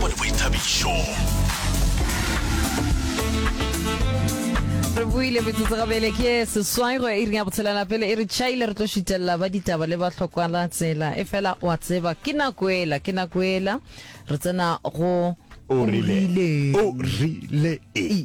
Go le boithabišo. re buile metsotso gabele ke seswaego e ring ya botshelela pele e re chaile re tlo šitelela ba ditaba le ba tlhokwala tsela e fela wa tseba ke nako ela ke nako ela re tsena go o rile o rile e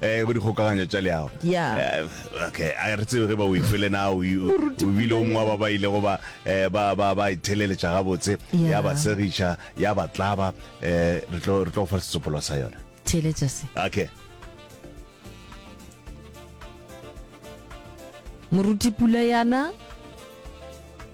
eh bo dikgokaganya tša leago ya eh, okay a re tsebe ge ba o ife le na o bile o mongwa ba ba ile go ba eh, ba ba ba itheleletša ga botse ya ba segiša ya ba tlaba eh re tlo re tlo fa setsopolo sa yona theletša se okay moruti pula yana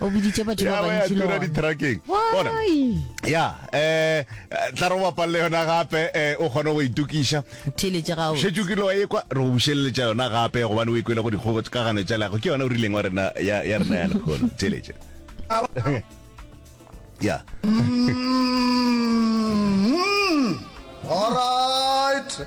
o boditše batho ba bantši le ditrakeng bona ya eh tla re wa palle yona gape eh o kgone go itukiša thele tša gago shetse ke lo e kwa re go bušeletša yona gape go bana o ikwela go dikgogo ka gane tša lago ke yona o rileng wa rena ya ya rena ya lekgolo thele tša ya mm-hmm. all right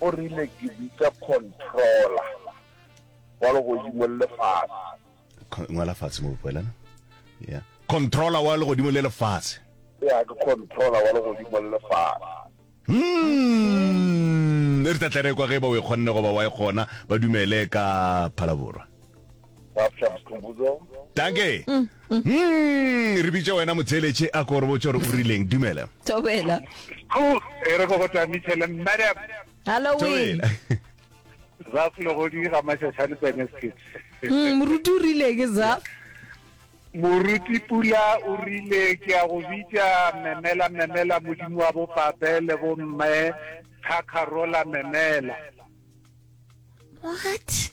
O rile, Ke bitša controller wa legodimo le lefase. Con- ngwala fatshe mo bopoelana yeah. controller wa legodimo le lefase Ya, ke controller wa legodimo le lefase. Hmm, e re tla tla re kwa ge ba o e kgonne goba wa e kgona ba dumele ka phalaborwa Bafta Mkhumbuzo. Dankie. Hum, re bitše wena motheeletše a ko re botše gore o rileng. Dumela. Thobela. Ho, e re ko go Tamisele, madam. Halloween. Thobela. Zaf Legodi ga Mashashane Pene Skit. Hmm, moruti o rile ke Zaf. Moruti Pula o rile ke a go bitša memela memela modimo wa bopape le bomme Khakharola memela. What?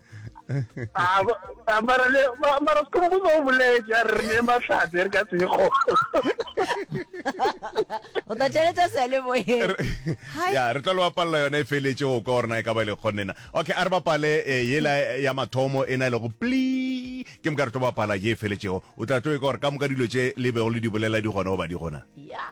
Ah, mara le mara se kombo ba boletse a re ne matlhatse re ka tsego o ta tšeletsa se le boye ya re tla lo bapalla yona e feletse go ka gorena e ka ba e le kgonnena okay a re bapale eh, yela ya mathomo e na le go pli ke moka re tlo bapala ye e feletsego o tla tlo e ka gore ka moka dilo tše le bego le di bolela di gona goba di gona ya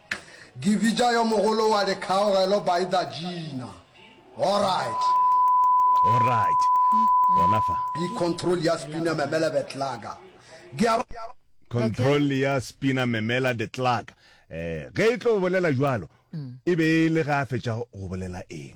Givija yo mogolo wa dikgaogelo by the Gina. Alright. Alright. Gona fa. Be control ya spina memela betlaga. Gea. Control ya spina memela detlaga. Eh, ge e tlo bolela jwalo, e be e le ga a fetša go bolela eng?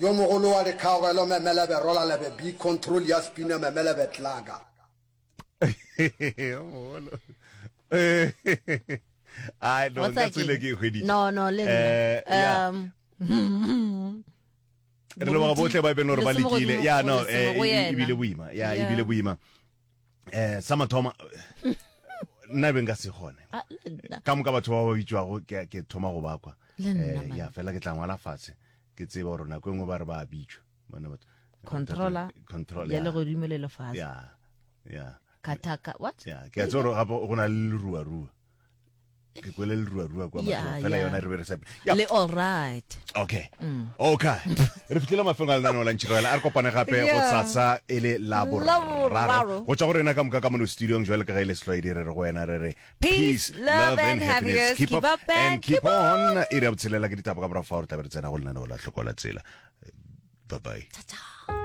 Yo mogolo wa dikgaogelo Memelebe Rolalebe B Control ya spinner Memelebe Tlaga. Yo mogolo. I don't. That's tsile ke hweditse. No, no, le eh, Um, hmm. re leboga botlhe ba e beng gore ba lekile ya no eh, e, e, e bile boima ya e bile boima eh sa mathomo nna be nka se gone Ah, le nna. ka moka batho ba ba bitšwago ke ke thoma go bakwa Le nna, Eh, man. ya fela ke tla ngwala fatshe ke tseba gore nako e nngwe ba re ba bitšwa Bona batho- controller Control, ya ya. legodimo le lefase ya ya kataka what ya ke a tseba gore gape go na le leruarua ke kwele le rua rua kwa yeah, fela yona re be re sa le all right okay mm. okay re fitlhile mafelo a lenaneo la ntšhirela a re kopane gape go tsatsa e le la boraro go tswa go rena ka moka ka mono studiong jwale ka ga e le setlwaedi re re go wena re re peace love and happiness keep up and keep on e re ya botshelela ke ditaba ka morago fa gore tlabe re tsena go lenaneo la tlhokola tsela bye bye